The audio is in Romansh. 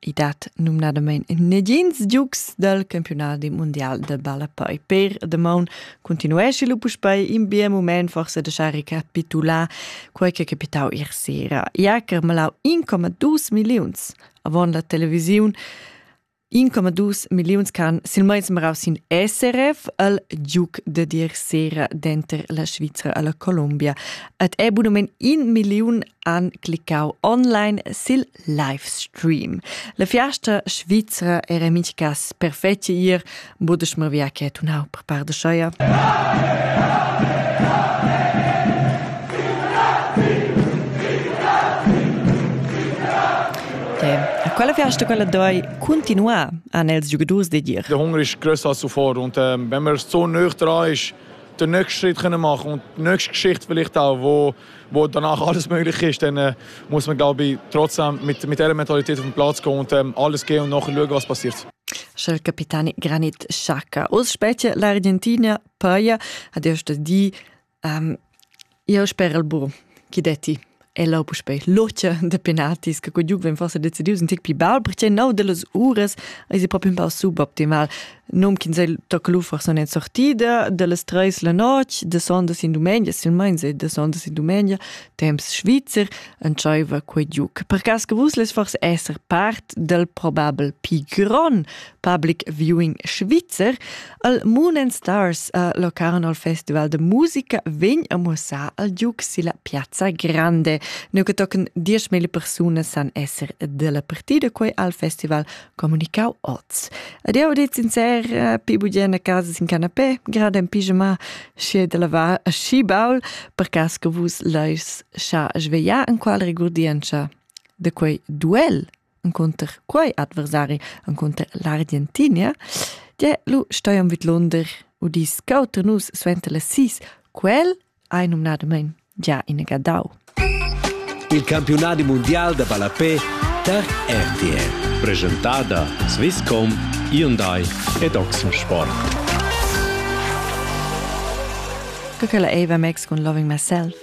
I dat numnadamain negins giugs dal campiunadi mundial da ballapei. Per damaun continuesci lu puspei in bien mument forsa da schar recapitular quei che capitau ier sera. I ha carmalau 1,2 milliuns avon la televisiun 1,2 milliuns can silmeins marau sin SRF al giug de dir sera denter la Svizra alla Colombia. Et è bunamein in milliun an cliccau online sil livestream. La fiasta svizra era mintgas perfetto ir, budesch mir via che tunau per par de scheia. A quella fiasta quella doi continuar an els giugadurs de dir. Der Hunger ist größer als zuvor und ähm, wenn man so nöch dran ist, den nächsten Schritt können machen und die nächste Geschichte vielleicht auch, wo wo danach alles möglich ist, dann äh, muss man glaube ich trotzdem mit, mit der Mentalität auf den Platz gehen und ähm, alles gehen und nachher schauen, was passiert. Schel capitani Granit Xhaka. Os specie l'Argentina poi ad iosto di um, io spero il buon chi detti e lo puspei loce de penatis che quei giug ven forse decidius un tic pi bel perché no de las uras is proprio un po suboptimal Num ch'ins ei toca lu forsa ina sortida dallas treis la notg, de sondas in dumengia, silmeins ei de sondas in dumengia, temps svizzer, entscheiva quei giuc. Per cass che vus less forse esser part del probabel pi gron public viewing svizzer, al Moon and Stars uh, Locarnol Festival de Musica vegn a muossar al giuc silla Piazza Grande. Neu che tochen dieschmila persunas san esser della partida quei al festival communicau oz. Ed eu dit sincer, eh, pi bugen a casa sin canapé, grad en pijama, schi de lavar a schi baul, per cas che vus leis scha svegliar en qual regurdienza de quei duel encontr quei adversari encontr l'Argentinia, je lu steiam vid Lunder, udis cauter nus suenter las sis, quel Ei numnadamein gia inegadau. Il campiunadi mundial da ballapé tar RTL, presentada Swisscom, Hyundai ed Oxensport. Co che la Eva Max cun Loving Myself.